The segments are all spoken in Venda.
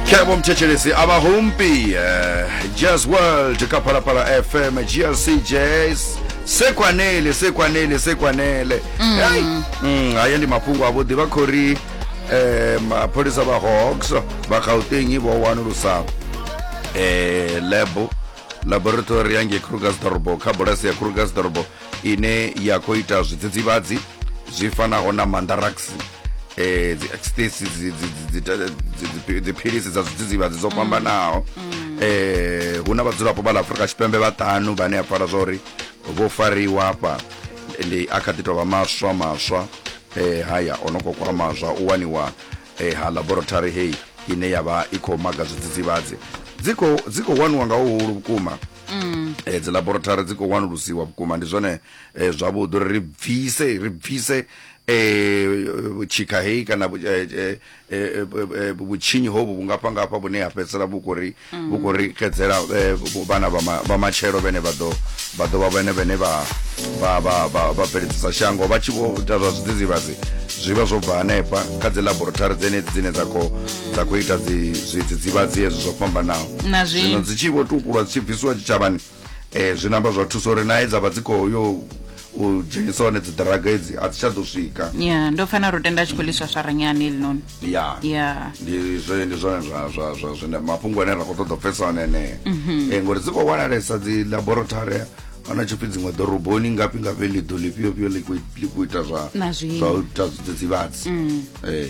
kebo mthetshelesi aba humpi eh, jazz world ka phalaphala fm glc jazz sekwanele sekwanele sekwanele Hey, mm, haya ndi mafhungo avhuḓi vha khou ri eh, mapholisa vha hawks vha gauteng vho wanulusa eh, lab laboratory yange krugersdorbo kha bulasi ya krugersdorbo ine ya khou ita zwidzidzivhadzi zwi fanaho na mandarax eh dzi ecstasy dziphilisi dza zwidzidzivhadzi dzo fhambanaho eh hu na vhadzulapo vha ḽa afurika tshipembe vhaṱanu vhane a pfala zwa uri vho fariwa hafha ndi a kha ḓi tovha maswa maswa eh haya o no khou kwama zwa u waniwa eh ha laboratory heyi ine ya vha i khou maga zwidzidzivhadzi dzi khou dzi khou waniwa nga huhulu vhukuma mm. eh, dzi laboratory dzi khou wanulusiwa vhukuma ndi zwone eh, zwavhuḓi uri ri bvise ri bvise um tshikha heyi kana vhutshinyi hovhu vhungafha ngafha vhune ha fhedzisela vhu khou ri vhu khou ri xedzela vhana vha matshelo vhene vha ḓo vha ḓo vha vhene vhene vha vha vha vha vha bveledzisa shango vha tshi vho ita zwa zwidzidzivhadzi zwi vha zwo bva hanefha kha dzi laboratory dzenedzi dzine dza khou dza khou ita zwidzidzivhadzi hezwo zwo fhambanaho zwino dzi tshi vho tukulwa dzi tshi bvisiwa tshitshavhani um zwi namba zwa thusa uri nae dza vha dzi khou yo u dzhenisa hone dzi draga edzi a dzi tsha ḓo swika ya ndo pfana ro tenda tshi khou liswa swaranyani elinoni ya ya ndi zwe ndi zwone zwa zwa zwa zwine mafhungo ane ra khou ṱoḓa pfesa one enee mhm. eh, ngori dzi khou wanalesa dzi laboratory ana tshipfi dziṅwe ḓoroboni ngafhi ngafhi ḽiḓo ḽifhiofhio ḽi khou ita zwa zwa ita zwidzidzivhadzi mm. eh.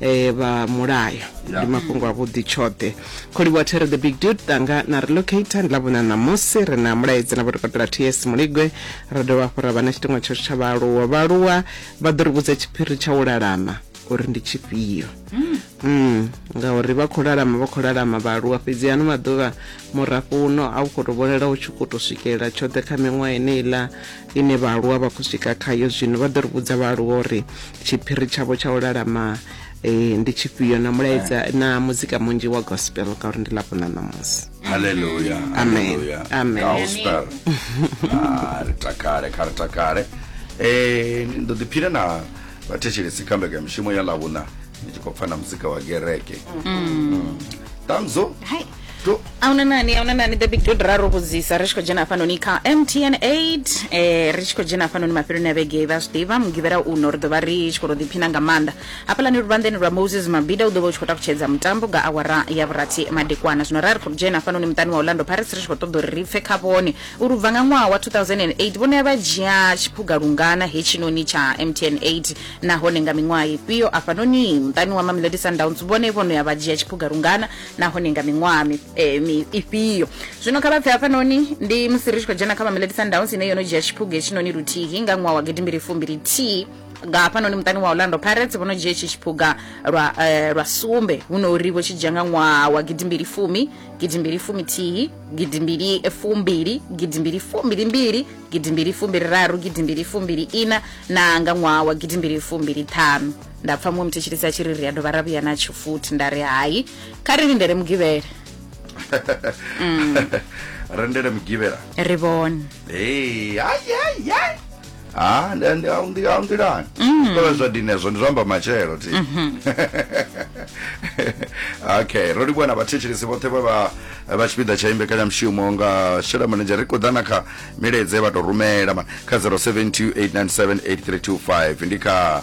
eh, vha mulayo ndi mafhungo a vhuḓi tshoṱhe kholiwa there the big dude tanga na relocator ndi lavhona ṋamusi ri na mulaedzi na vhotokotela ts muligwe ra dovha hafhu ra vha na tshiṱiṅwa tshashu tsha vhaaluwa vhaaluwa vha ḓo ri vhudza tshiphiri tsha u lalama uri ndi tshifhio mm. ngauri vha khou lalama vha khou lalama vhaaluwa fhedzi ano maḓuvha murafho uno a u khou to vhonala u tshi khou to swikelela tshoṱhe kha miṅwaha eneiḽa Ine vhaaluwa vha khou swika khayo zwino, vha ḓo ri vhudza vhaaluwa uri tshiphiri tshavho tsha u lalama ndi tshifhio na mulaedza na muzika munzhi wa gospel ngauri ndi ḽavhuna ṋamusi. Haleluya, haleluya, gospel. Ah, ri takale, kha ri takale. Eh, ndo ḓiphina na vhathetshelesi kha mbekanyamushumo ya ḽavhuna ni tshi khou pfa na muzika wa gereke. Ṱanzo, ahuna nani ahuna nani the big dod ra ro vhudzisa ri tshi khou dzhena hafhanoni kha mtn 8 eh, ri tshi khou dzhena hafhanoni mafheloni a vhege vha zwi ḓivha mugivhela uno ri ḓo vha ri tshi khou to ḓiphina nga maanḓa hafhaḽani luvhanḓeni lwa moses mabida u ḓo vha u tshi khou takutshedza mutambo nga awara ya vhurathi madekwana zwino ra ri khou dzhena hafhanoni muṱani wa orlando pirates ri tshi khou ṱoḓa uri ri pfe kha vhone uri u bva nga ṅwaha wa 2008 vhone vha dzhia tshiphuga lungana hetshinoni tsha mtn 8 nahone nga miṅwaha ifhio afhanoni muṱani wa mamelodi sundowns vhone vhono ya vha dzhia tshiphuga lungana nahone nga miṅwaha mi- eh, mi- ifhio zwino kha vha pfe hafhanoni ndi musi ri tshi khou dzhena kha mamelodi sundowns ine yo no dzhia tshiphuga hetshinoni luthihi nga ṅwaha wa gidimbili fumbili thihi nga hafhanoni muṱani wa orlando pirates vho no dzhia itshi tshiphuga lwa, eh, lwa sumbe hu no uri vho tshi dzhia nga ṅwaha wa gidimbili fumi gidimbili fumi thihi gidimbili fumbili gidimbili fumbili mbili gidimbili fumbili raru gidimbili fumbili ina na nga ṅwaha wa gidimbili fumbili ṱhanu nda pfa muṅwe muthetshelisi a tshi ri ri a dovha ra vhuya na tshifuthi nda ri hai kha ri lindele mugivhele rendele mugivhela ri vhone Hey, ai, ai, ai. Ah, ndi- ndi- au ndi- au nḓilani kovhe zwa dini hezwo ndi zwa amba matshelo ti okay ro livhuwa na vhathetshelesi vhoṱhe vhe vha vha tshipiḓa tsha imbekanyamushumo nga shela manedzhe ri khou ḓa na kha milaedze vha tou rumela ma- kha 0728978325 ndi kha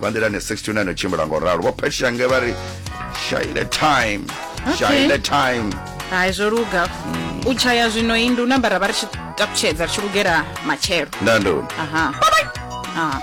vha nḓilani 69 o tshimbila ngo ralo vho phetshange vha ri shaile time Okay. shaile time hai zwo luga u tshaya zwino i ndu nambara vha ri tshi taputshedza ri tshi lugela matshelo ndandu aha Ah.